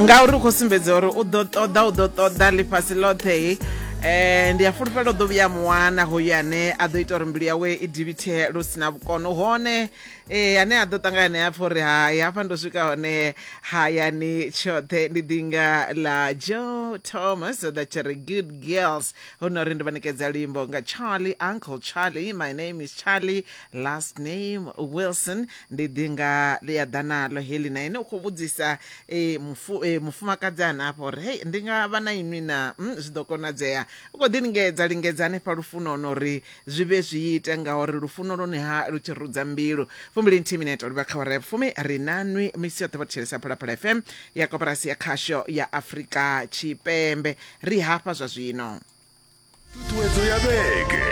ngauri u khou sumbedza uri u ḓo ṱoḓa u ḓo ṱoḓa ḽifhasi ḽoṱhe eh ndi a fulufhela u ḓo vhuya muwana hoyu ane a ḓo ita uri mbilu yawe i divhithe lu si na vhukono hone eh ane a ḓo ṱangana naye apfa uri hai hafha ndo swika hone hayani tshoṱhe ndi ḓinga ḽa joe thomas that tshi ri good girls hu no ri ndi vha ṋekedza luimbo nga charlie uncle charlie my name is charlie last name wilson ndi ḓi nga ḽi a ḓa naḽo heḽi na ene u khou vhudzisa e, mufu, e, mufumakadzi hanafho uri hei ndi nga vha na inwi na mm, zwi ḓo konadzea u khou ḓi lingedza lingedza hanefha lufunoni uri zwi vhe zwi ite ngauri lufuno lwone ha lu tshi rudza mbilu fumbili nthihi minete livha kha wara ya vhufumi ri na nwi misi yoṱhe vha thetshelesa phalaphala fm ya koporasi ya khasho ya afrika tshipembe ri hafha zwa zwino ṱhuṱhuwedzo ya vhege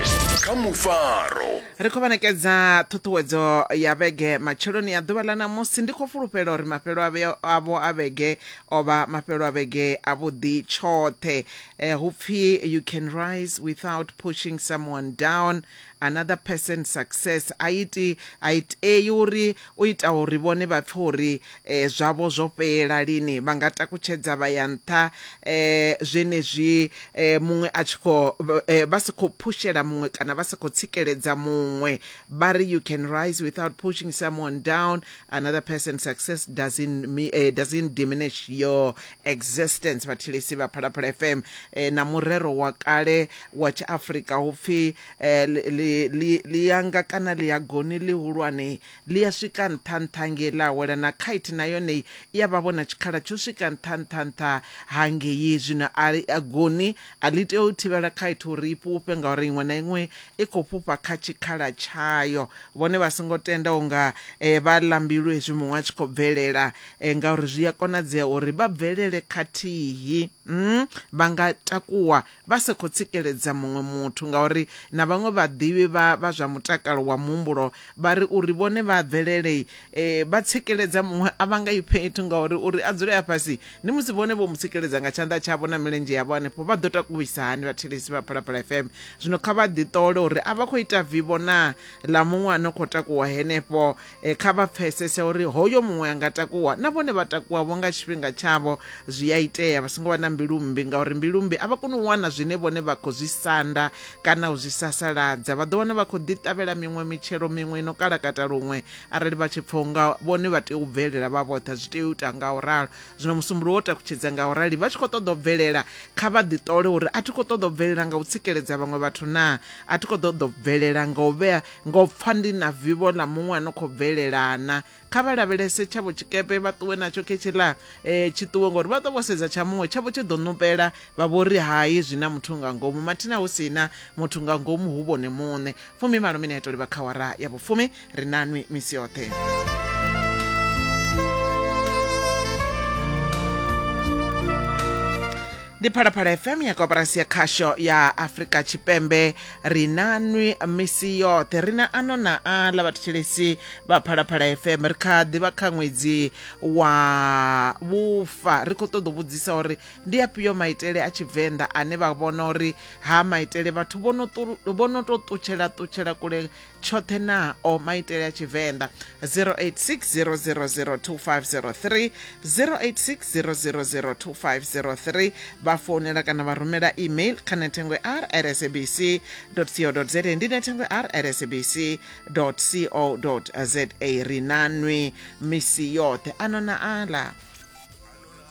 kha mufaro ri khou vhanekedza ṱhuṱhuwedzo ya vhege matsheloni a ḓuvha ḽa ṋamusi ndi khou fulufhela uri mafhelo avho a vhege o vha mafhelo a vhege a vhuḓi tshoṱhe eh, hu pfi you can rise without pushing someone down Another person success a i ti a i tei uri u ita uri vhone vha pfe uri eh, zwavho zwo fhela lini vha nga takutshedza vha ya nṱha eh, zwenezwi eh, muṅwe a tshi khou eh, vha si khou phushela muṅwe kana vha si khou tsikeledza muṅwe vha ri you can rise without pushing someone down another person success doesn't, me, eh, doesn't diminish your Existence Vhathilisi vha Phalaphala FM eh, na murero wa kale wa Tshiafrika hu pfi eh, li- li- li- lianga kana liagoni lihulwane li a swika nṱha nṱha ngei ḽa wela na kite na yone i a vha vhona tshikhala tsho swika nṱha nṱha nṱha ha ngei zwino a li- a goni a ḽi tea u thivhela kite uri i fhufhe ngauri iṅwe na iṅwe i khou fhufha kha tshikhala tshayo vhone vha songo tenda unga eh, vha lambilwe hezwi muṅwe a tshi khou bvelela Ngauri zwi a konadzea uri vha bvelele khathihi. Vha nga takuwa vha sa khou tsikeledza muṅwe muthu ngauri na vhaṅwe vhaḓivhi vha vha zwa mutakalo wa muhumbulo vha ri uri vhone vha a bvelele vha tsikeledza muṅwe a vha nga i fhethu ngauri uri a dzule a fhasi ndi musi vhone vho mu tsikeledza nga tshanḓa tshavho na milenzhe yavho hanefho vha ḓo takuwisa hani vhathetshelesi vha Phalaphala FM. Zwino kha vha ḓiṱole uri a vha khou ita vivho naa ḽa muṅwe a no khou takuwa henefho E, kha vha pfesese uri hoyo muṅwe a nga takuwa na vhone vha takuwavho nga tshifhinga tshavho zwi a itea vha songo vha na mbilu mmbi ngauri mbilu mmbi a vha koni u wana zwine vhone vha khou zwi sanda kana u zwi sasaladza vha ḓo wana vha khou ḓiṱavhela miṅwe mitshelo miṅwe ino kalakata luṅwe arali vha tshi pfha unga vhone vha tea u bvelela vha vhoṱha zwi tea u ita nga u ralo zwino musumbulo wo takutshedza nga u rali vha tshi khou ṱoḓa u bvelela kha vha ḓiṱole uri a thi khou ṱoḓa u bvelela nga u tsikeledza vhaṅwe vhathu naa a thi khou ṱoḓa u bvelela nga u vhea Ngo pfa ndi na vivho ḽa muṅwe a no khou bvelelana. Kha vha lavhelese tshavho tshikepe vha ṱuwe natsho khe tshiḽa eh, tshi ṱuwe ngori vha ḓo vho sedza tsha muṅwe tshavho tshi ḓo ṋupela vha vho ri hai zwi na muthu nga ngomu mathina hu si na muthu nga ngomu hu vhone muṋe. Fumi malo mineto livha kha wara ya vhufumi ri na nwi misi yoṱhe. ndi phalaphala fm ya koporasi ya khasho ya afrika tshipembe ri na nwi misi yoṱhe ri na ano na aḽa vhathetshelesi vha phalaphala fm ri kha ḓivha kha ṅwedzi wa vhufa ri khou ṱoḓa u vhudzisa uri ndi afhio maitele a tshivenḓa ane vha vhona uri ha maitele vhathu vho no tou ṱutshela ṱutshela kule tshoṱhe nao maitele a tshivenḓa 0860002503 0860002503 vha founela kana vha rumela email kha nethengo r rsabc co za ndi nethengo r rsabc co za ri nanwi misi yoṱhe ano na ala